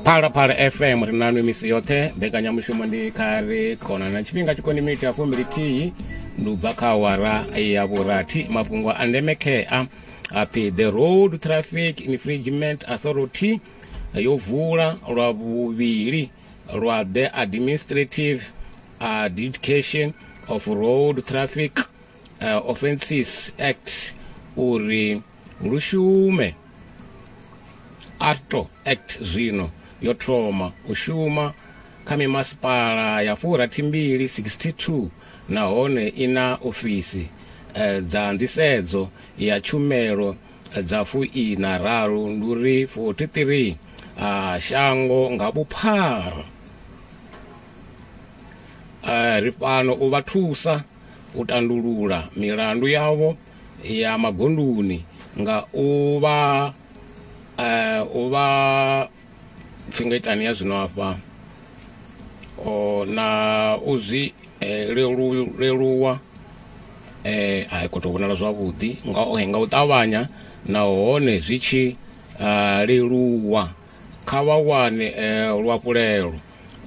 phalaphala fm ri nanu misi yoṱhe mbekanyamushumo ndi kha ri khona na tshifhinga tshikoni miniti ya fumbilithihi ndi ubva kha awara ya vhurathi mafhungo a ndeme khea apfi the road traffic infringement authority yo vula lwa vhuvhili lwa the administrative adjudication of road traffic uh, offences act uri Lu shume. Arto Act zwino yo thoma u shuma kha mimasipala ya furathimbili, 62, nahone i na ofisi dza nḓisedzo ya tshumelo dza fuiṋa raru, ndi u ri 43, shango nga vhuphara. Ri fhano u vha thusa. u tandulula milandu yavho ya magondoni nga u vha eh, u vha pfi nga itani ya zwino afha o na u zwi eh, lelu- leluwa eh a khou tou vhonala zwavhuḓi nga o nga u ṱavhanya nahone zwi tshi ah, leluwa kha vha wane luhafhulelo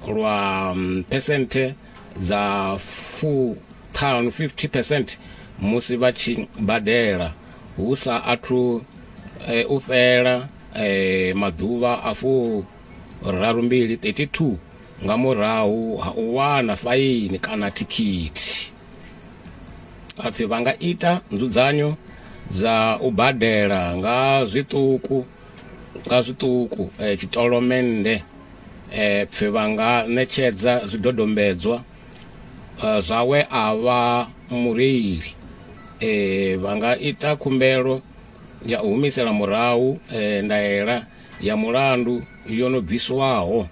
lwa phesenthe dza fuṱhanu, 50 percent, musi vha tshi badela hu sa athu u fhela maḓuvha a furarumbili, 32, nga murahu ha u wana faini kana thikhithi. Ha pfi vha nga ita nzudzanyo dza u badela nga zwiṱuku. nga zwiṱuku eh, tshitolomennde eh, pfe vha nga ṋetshedza zwidodombedzwa eh, zwawe a vha mureili eh, vha nga ita khumbelo ya u humisela murahu eh, ndaela ya mulandu yo no bviswaho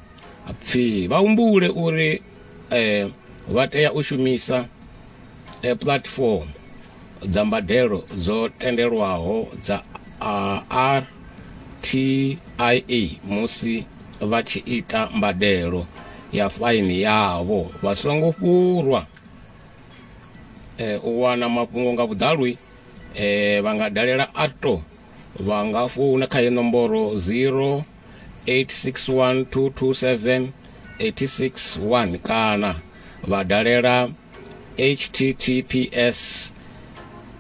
pfi vha humbule uri eh, vha tea u shumisa eh, platform dza mbadelo dzo tendelwaho dza ah, RTIA musi vha tshi ita mbadelo ya faini yavho vha songo fhurwa eh, u wana mafhungo nga vhuḓalo eh, vha nga dalela ato vha nga founa kha ye nomboro 0 861227861 kana vha dalela https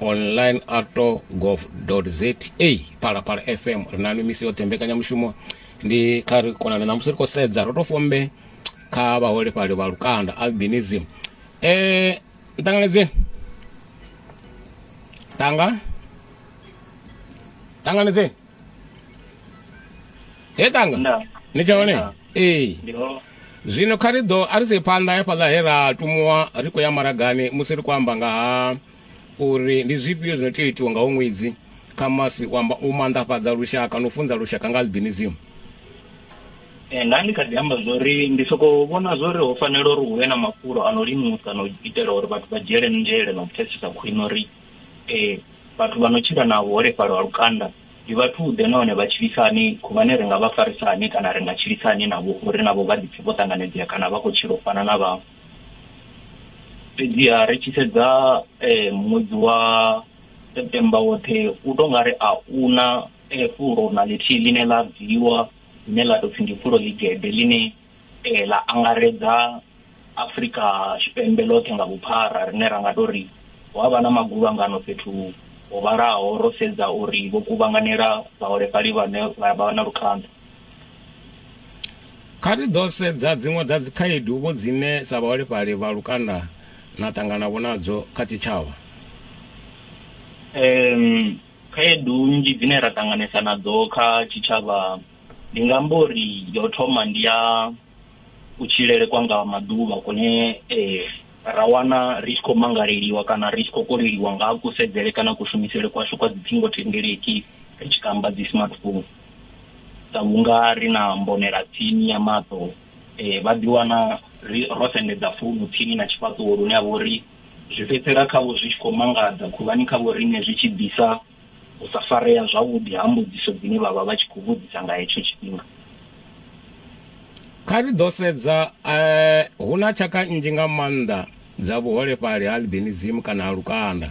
online ato gov za phalaphala fm ri nanu misi yoṱhe mbekanyamushumo ndi kha ri konane na musi ri khou sedza ro to fombe kha vhaholefhali vha lukanda albinism eh nṱanganedzeni tanga tanganedzeni he tanga Nda. ni tshone Nda. ee ndi ho zwino kha ri ḓo a ri sie phanḓa ya fhaḽa he ra tumuwa ri khou ya maragani musi ri khou amba nga ha uri ndi zwifhio zwino tea u itiwa nga ho ṅwedzi kha masi u amba- u maanḓafhadza lushaka no funza lushaka nga albinism Eh, nda ndi kha ḓi amba zwori ndi soko vhona zwori ho fanela uri hu vhe na mafulo a no limusa na u itela uri vhathu vha dzhiele nzhele na u pfesesa khwine uri Ee, vhathu vha no tshila na vhuholefhali ha lukanda ndi vhathu-ḓe nahone vha tshilisa hani? Khuvhane ri nga vha farisa hani kana ri nga tshilisa hani navho uri navho vha ḓipfe vho ṱanganedzea kana vha khou tshila u fana na vhaṅwe? Fhedziha ri tshi sedza ṅwedzi wa September woṱhe u tou nga ri a u na fulo na ḽithihi ḽine ḽa bviwa ḽine ḽa tou pfhi ndi fulo ḽigede ḽine ee ḽa angaredza Afrika Tshipembe ḽoṱhe nga vhuphara rine ra nga tou ri hu a vha na maguvhangano fhethu ho vhalaho ro sedza uri vho kuvhanganela vhaholefhali vhane vha vha na lukhanḓa Kha ri ḓo sedza dziṅwe dza dzikhaedu vho dzine sa vhaholefhali vha lukanda na ṱangana vho nadzo kha tshitshavha. Khaedu nnzhi dzine ra ṱanganesa nadzo kha tshitshavha ndi nga amba uri yo thoma ndi ya kutshilele kwa nga maḓuvha kune eh, ra wana ri tshi khou mangaleliwa kana ri tshi khou koleliwa nga ha kusedzele kana kushumisele kwashu kwa dzithingo thendeleki ri tshi kamba dzi smartphone sa vhunga ri na mbonela tsini ya maṱo eh, vha ḓiwana ro sendedza founu tsini na tshifhaṱuwo lune a vha uri zwi fhedzisela khavho zwi tshi khou mangadza khuvhani khavho riṋe zwi tshi ḓisa u sa farea zwavhuḓi ha mbudziso dzine vha vha vha tshi khou vhudzisa nga hetsho tshifhinga. Kha ri ḓo sedza eh, hu na tshaka nnzhi nga maanḓa dza vhuholefhali ha albinism kana ha lukanda.